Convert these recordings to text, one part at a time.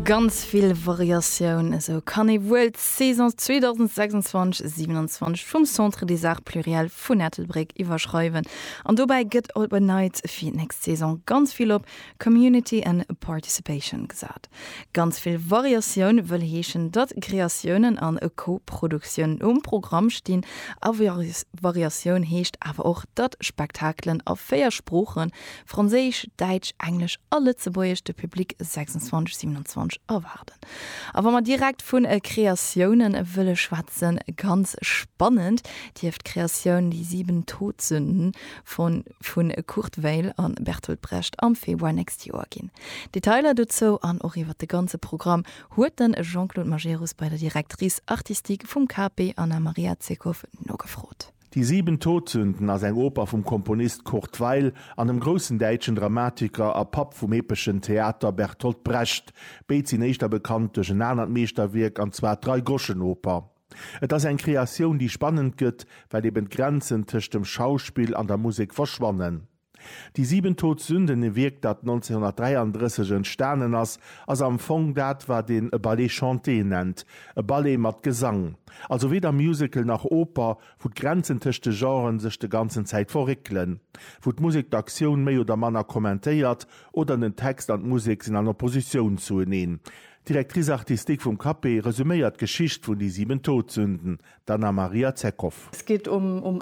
Ganz vill Variatioun, esou kann ee wuel d'Saison 2026/27 vum Centre des Arts Pluriels vun Ettelbréck iwwerschreiwen. An dobäi gëtt op en Neits fir d'nächst Saison ganz vill op Community and Participation gesat. Ganz vill Variatioun wëll heeschen, datt Kreatiounen a Co-Produktiounen um Programm stinn. A Variatioun heescht awer och, datt Spektakelen a véier Sprooche Franséisch, Däitsch, Englesch a Lëtzebuergesch de Public 26, 27 erwaarden. A wa mer direkt vu Kreatioune wëlle schwätzen, ganz spannend dierft d'Kreatioun Die sieben Todsünden von vu Kurt Weill a Bertolt Brecht am Februar nächst Joer ginn. Detailer dozou an och iwwer de ganze Programm huet de Jean-Claude Majerus bei der Directrice artistique vum KAP, Anna Maria Zeckow, nogefrot. Die sieben Todsünden ass eng Oper vum Komponist Kurt Weill an dem groussen däitschen Dramatiker a Papp vum epeschen Theater Bertolt Brecht. Béid sinn éischter bekannt duerch en anert Meeschterwierk, an zwar d'Dreigroschenoper. Et ass eng Kreatioun, déi spannend gëtt, well eben d'Grenzen tëscht dem Schauspill an der Musek verschwannen. Die sieben Todsünden, e Wierk, dat 1933 entstanen ass, ass am Fong dat, wat een e Ballet chanté nennt, e Ballet mat Gesang. Also weder Musical nach Oper, wou d'Grenzen tëscht de Genren sech de ganzen Zäit verréckelen, wou d'Musek d'Aktioun méi oder manner kommentéiert oder den Text an d'Musek sinn an Oppositioun zueneen. D'Directrice artistique vum CAPE resuméiert d'Geschicht vun Die sieben Todsünden, d'Anna Maria Zeckow. Et geet ëm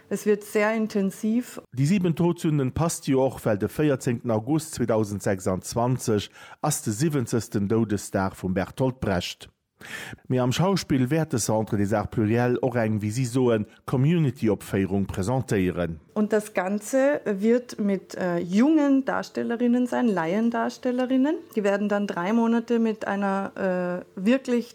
Es wird sehr intensiv. Déi 7 Todsünden passt jo och, well de 14 August 2026 ass de siwwenzegsten Doudesdag vum Bertolt Brecht. Mee am Schauspill wäert de Centre des Arts Pluriels och eng, wéi si soen, Community-Opféierung presentéieren. Und das Ganze wird mit jungen Darstellerinnen sein, Laiendarstellerinnen. Die werden dann drei Monate mit einer wirklich.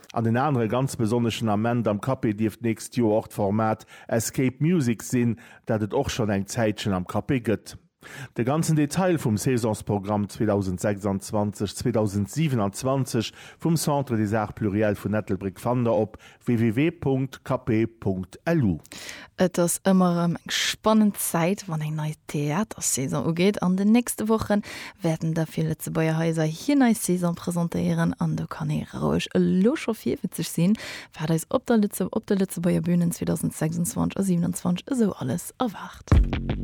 An en anere ganz besonneschen Ament am Café dierft d'nächst Joer och d'Format Escape Music sinn, dat et och schonn eng Zäitchen am Café gëtt. De ganzen Detail vum Saisonsprogramm 2026, 2027 vum Centre des Arts Pluriels vun Ettelbréck fannt der op www.café.lu. Et ass ëmmer erëm eng spannend Zäit, wann eng nei Theatersaison ugeet. An den nächste Woche wäerten der vill Lëtzebuerger Haiser hir nei Saison presentéieren. An do kann ee roueg elo scho virwitzeg sinn, wat eis op de Lëtzebuerger Bünen 2026 a 27 esou alles erwaart.